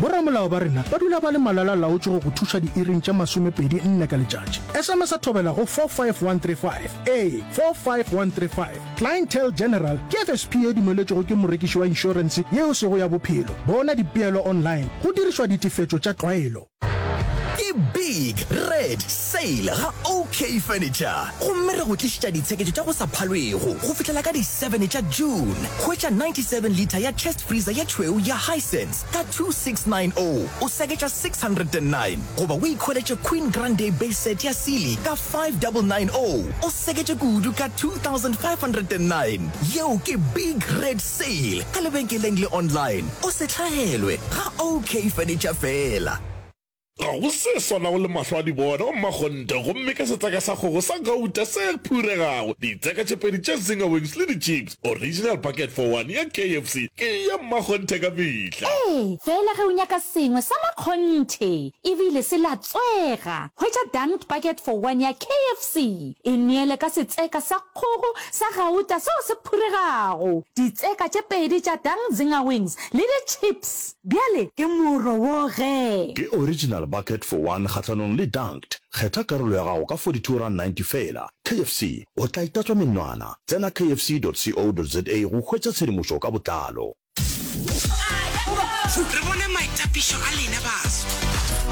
Boramolao ba rena ba dula ba le malala-a-laotšwe go go thuša diiring tše masomepedi nne ka letšatši. Sms-a thobela go 45135. Ee, 45135. Clientele General ke FSP e dumeletšwego ke morekiši wa inšorense yeo e sego ya bophelo. Bona dipeelo online go dirišwa ditefetšo tša tlwaelo. Ke Big Red Sale ga OK Furniture gomme re go tlišetša ditsheketšo tša go sa phalwego go fihlela ka di 7 tša June. Hwetša 97 litre ya chest freezer ye tšhweu ya Hisense, Star 2690 o seketša 609 goba o ikhweletše Queen Grand Day Base Set ya Sealy ka 5990 o seketše kudu ka 2509. Yeo ke Big Red Sale ka lebenkeleng le online. O se hlahelwe ga OK Furniture feela. Ga go se swanago le mahlo a dibona wa mmakgonthe gomme ka setseka sa kgogo sa gauta se phuregago, ditseka tše pedi tša zinger wings le di-chips, original bucket for one ya KFC ke ya mmakgonthe ka mehla. Ee, fela ge o nyaka sengwe sa makgonthe e bile se latswega, hwetša dunked bucket for one ya KFC, e neele ka setseka sa kgogo sa gauta seo se phuregago, ditseka tše pedi tša dunked zinger wings le di-chips. Bjale ke moro wo ge. Ke original bucket for one kgahlanong le dunked. Kgetha karolo ya gago ka 42 rand 90 feela. KFC, o tla itatswa menwana. Tsena kfc dot co dot za go hwetša tshedimošo ka botlalo. Re bone maitapišo a lena baso.